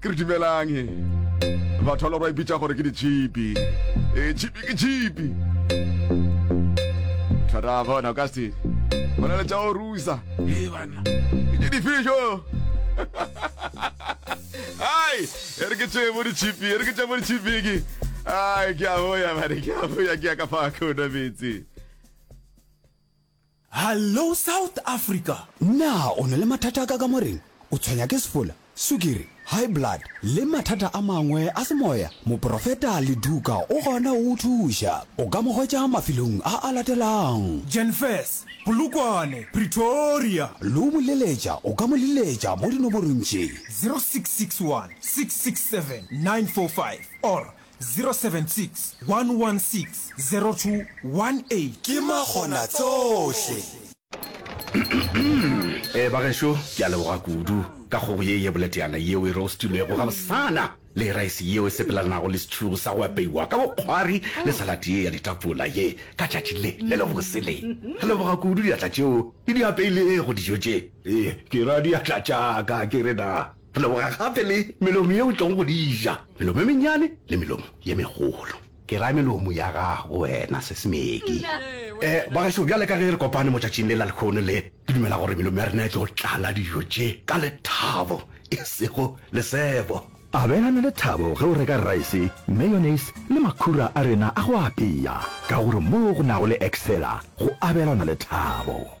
Ke re dumelang he. Batho ba ba ipitša gore ke ditšhipi. E tšhipi ke tšhipi. Thata bona o ka se. Go na le tša o rusa. He banna. Ke difišo. Hai, e re ke tše mo ditšhipi, e re ke tše mo ditšhipi ke. Ai, ke a boya, mare ke a boya ke ya ka fa ka o metsi. Hallo South Africa! Na o na le mathata a ka kamoreng? O tshwenya ke sefola, sukiri, high blood le mathata a mangwe a semoya? Moporofeta Leduka o gona go go thuša. O ka mo hwetša mafelong a a latelago. Jenfess, Polokwane, Pretoria. Lo mo leletša, o ka mo leletša mo dinoborong tše. 0661 667 945 or 076 116 0218. Ke Makgonatsohle. Ee, bagešo, ke a leboga kudu ka kgogo ye ye boleteana yeo e roastilwego gabosana le raese yeo e sepelelanago le setšhugu sa go apeiwa ka bokgwari le salad ye ya ditapola ye ka tšatši le le lebose le. Ke leboga kudu diatla tšeo di di apeilego dijo tše. Ee, ke ra diatla tša ka, ke re na? Re leboga gape le melomo ye o tlogo go di ja, melomo ye mennyane le melomo ye megolo. Ke ra melomo ya gago wena, se Smeki. E, bagašo, bjale ka ge re kopane motšatšing le la lekhono le, ke dumela gore melomo ya rena e tlo tlala dijo tše ka lethabo, e sego lesebo. Abelana lethabo ge o reka raese, mayonnaise le makhura a rena a go apea, ka gore moo go nago le Excella, go abelana lethabo.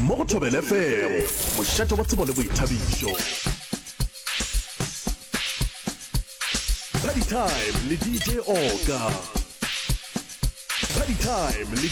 Mo go Thobela FM, mošate wa tsebo le boithabišo. Party Time le DJ Oka. Party Time le